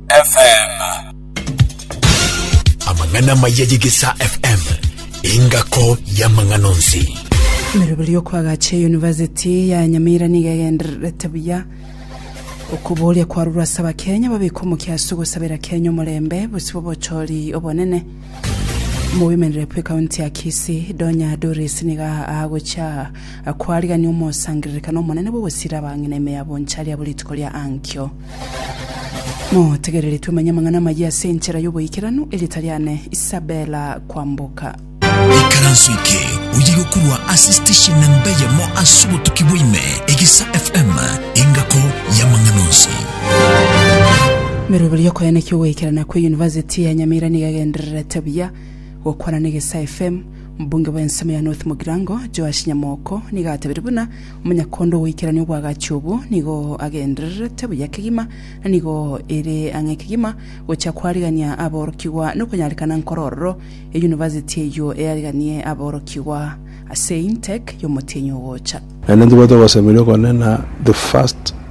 FM. Amang'ana amaya y'Egesaa FM, engako y'amang'ana onsi. Emeroberi y'okoagacha eyunivasiti ya Nyamira niga egendererete buya okoboria kwarurwa ase abakenya babeka omokia ase ogosabera Kenya omorembe bosibwa obochori obonene mobemerere bwe kaunti ya Kisii Donya Doris niga agocha kwarigania omosangererekano omonene bw'ogosira abang'ina ime yabo ncharia bwe rituko ria ankio Motegereri twemenye amang'ana amayia ase enchera y'oboikeranu, erieta riane Isabella Kwamboka. Ikaranso eke oye gokorwa ase station namba eyemo ase obotuki bwaime Egesa FM engako y'amang'ana onsi. Meroberi y'okoyanekia ogoikerana kwe University ya Nyamira nigo egendererete buya gokwana na Egesa FM. Mbunge bw'ensemo ya North Mugirango, Joash Nyamoko nigo atebirie buna Omonyakondo ogoikerania oboagachi obo nigo agendererete buya kegima, na nigo ere ang'e kegima gochia koarigania aborokigwa nokonyarekana nkoro ororo eyunivasiti eyio eariganie aborokigwa ase intake y'omotienyi ogocha. Naende ntibwate ogosemeria okone na the first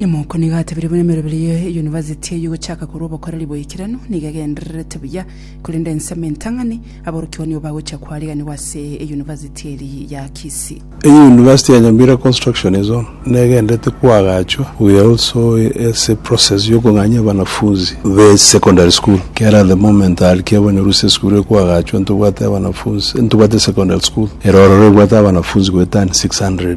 Nyama oko nigo atebire buna emerobera ye University eye gochaka korwa obokoreri boikeranu nigo egendererete buya, korende ensemo entang'ani aborokigwa nigo bagochia koariganigwa ase e University eri ya Kisii. Eye University ya Nyambira Construction Zone negendererete koagachwa buya also ase eprocess yokong'anyia abanafunzi be secondary school ekiagera at the moment aria kiabanyorwa ase esukuru eye koagachwa ntobwate abanafunzi ntobwate secondary school ere ororo ebwate abanafunzi goetani 600.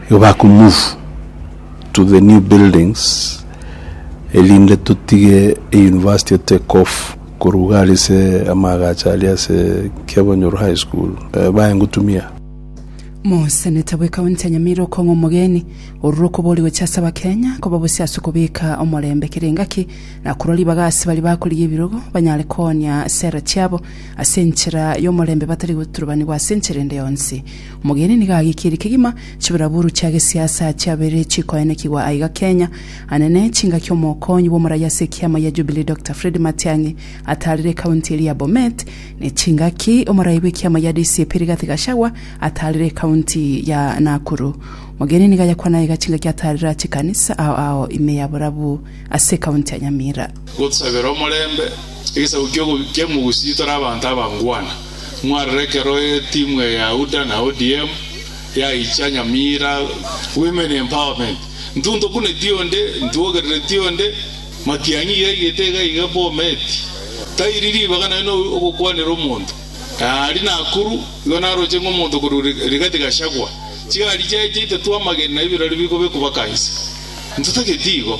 Igo bakomove to the new buildings erinde totige euniversity etake off korwa iga aria ase amaagacho aria ase Kiabonyoru High School, baye ngotumia. Moseneta bwe county ya Nyamira okong'a omogeni orure okobori gochia ase abakenya koba bosio ase okobeka omorembe kera engaki na korwa ribaga ase baria bakorigia ebirogo banyare koonia sera chiabo ase enchera yomorembe batari goturubanigwa ase enchera ende yonsi. Omogeni nigo agikirie kegima chibaraburu chia gesiasa chiabeire chikoenekigwa aiga Kenya. Anene chingaki Omokonyi bw'omoraia ase ekiama gia Jubilee Dokita Fred Matiang'i ataarire ekaunti eria ya Bomet, ne chingaki omoraia bw'ekiama gia DCP Rigathi Gachagua ataarire ekaunti ya Nakuru. Omogeni nigo ayakwana aiga chingaki ataarire aa chikanisa ao ao ime ya borabu ase ekaunti ya Nyamira. Gotusabera omorembe, egesaku ki'ogobikia emogusii tore abanto abangwana. Mwarora ekero etimu eye ya UDA na ODM yaicha Nyamira, Women Empowerment, Ntwo ntokuneti onde, ntwo ogerereti onde, Matiang'i iga igete iga iga, Bomet, Tairi ribaga naye no ogokwanera omonto, Ari Nakuru igo naroche ng'a omonto korwa Rigathi Gachagua chigari chiaye chiaitetwe amagena ebirori biko bikobakansa. Ntotageti igo.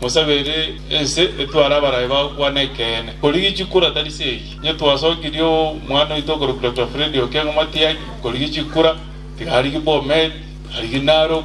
Mosabe ere ense etware abarai bao kwane ekeene. Korigichia kura tari se eye. Inye twasokirie oo mwana oito okorokwa Doctor Freddy Okengo Matiang'i, korigichia kura, tiga arigie Bomet, arigie Narok,